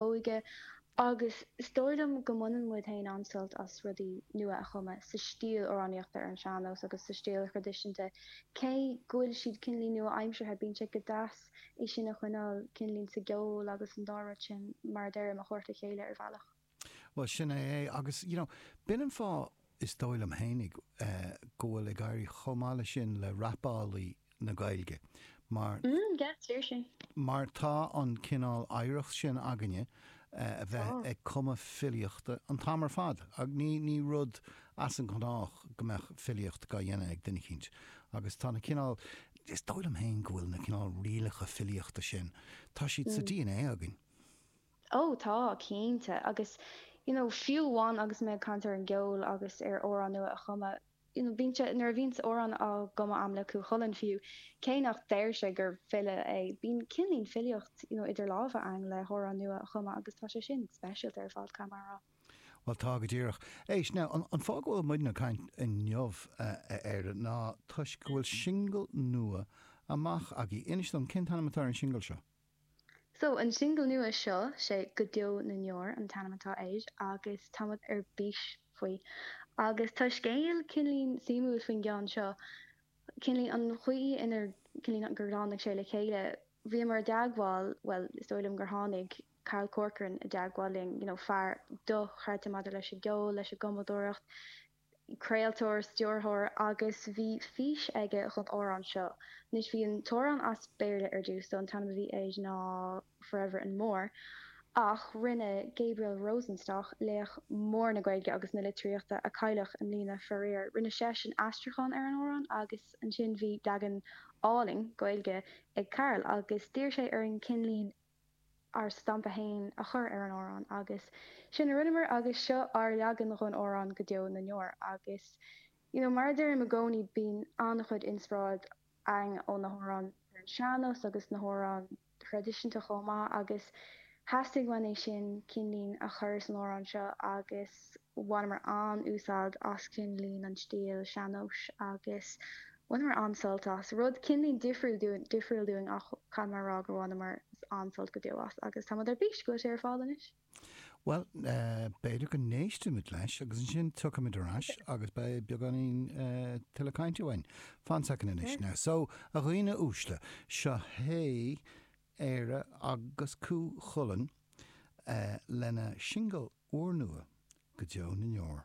óige agus is dóigh liom go mbaineann muid féin an-sult as rudaí nua a chumadh sa stíl amhránaíochta ar an sean-nós agus sa stíl thraidisiúnta cé go bhfuil siad cineáilín nua-aimseartha, bíonn sé go deas é sin a choinneáil cineáilín sa gceol agus an dá rud sin mar a deirim a thabhairt le chéile ar bhealach. Bhuel sin é é agus, you know, b'in an fáth Is dóigh liom féin go bhfuil ag éirí chomh maith leis sin le rapálaithe na Gaeilge mar mar tá an cineál oidhreacht sin againne a bheith ag cumadh filíochta an t-am ar fad ach ní ní rud as an ngnách go mbeadh filíocht dhá dhéanamh ag duine eicínt agus tá na cineál, is dóigh liom féin go bhfuil na cineál rialacha filíochta sin, tá siad sa DNA againn. Ó, tá, cinnte. Agus, you know, fiú amháin agus mé ag caint ar an gceol agus ar amhráin nua a chumadh, you know, bíonn sé, nuair a bhíonns amhráin á gcumadh a'm le Cú Chulainn fiú, cé nach deir sé gur file é, bíonn cineáilín filíocht, you know, idir lámha a'm le hamhrán nua a chumadh agus tá sé sin speisialta ar fad, caithfidh mé a rá. Bhuel, tá go díreach. Éist, now, an, an fáth go bhfuil muidne ag caint inniu, a Éire, ná toisc go bhfuil singil nua amach agaibh. Inis dom, cén t-ainm atá ar an singil seo? So, an singil nua seo, sé Go Deo na nDeor an t-ainm atá air agus táimid ar bís faoi. Agus tá scéal cineáilín suimiúil faoin gceann seo. Cineáilín, an chaoi inar, cineáilín, gur tháinig sé le chéile, bhíomar i dteagmháil, bhuel, is dóigh liom gur tháinig Carl Corcoran i dteagmháil linn, you know, fear dochreidte maidir leis an gceol, leis an gcumadóireacht, craoltóir, stiúrthóir agus bhí fís aige don amhrán seo. Anois, bhí an t-amhrán as Béarla ar dtús, so an t-ainm a bhí air ná Forever and More ach rinne Gabriel Rosenstock, laoch mór na Gaeilge agus na litríochta a cailleadh i mbliana faraor, rinne seisean aistriúchán ar an amhrán agus ansin bhí leagan álainn Gaeilge ag Carl agus d'iarr sé orainn cineáilín a ár stampa fhéin a chur ar an amhrán agus sin a rinneamar agus seo ár leagan dhon amhrán Go Deo na nDeor agus you know mar a deirim i gcónaí bíonn an-chuid inspioráid a'ainn ó na hamhráin ar an sean-nós agus na hamhráin thraidisiúnta chomh maith agus theastaigh uainn é sin cineáilín a chur san amhrán seo agus bhaineamar an-úsáid as cineáilín an stíl sean-nóis agus Bhaineamar an-sult as, rud cineáilín difriúil dúinn ach caithfidh mé a rá gur bhaineamar an-sult go deo as agus táimid ar bís go bhfuil sé ar fáil anois. Bhuel, b'fhéidir go n-éistfimid leis agus ansin tiocfaimid ar ais agus beidh beagáinín tuilleadh cainte a'ainn. Fan soicind anois now. So, a dhaoine uaisle, seo hé Éire agus Cú Chulainn lena singil úrnua, Go Deo na nDeor.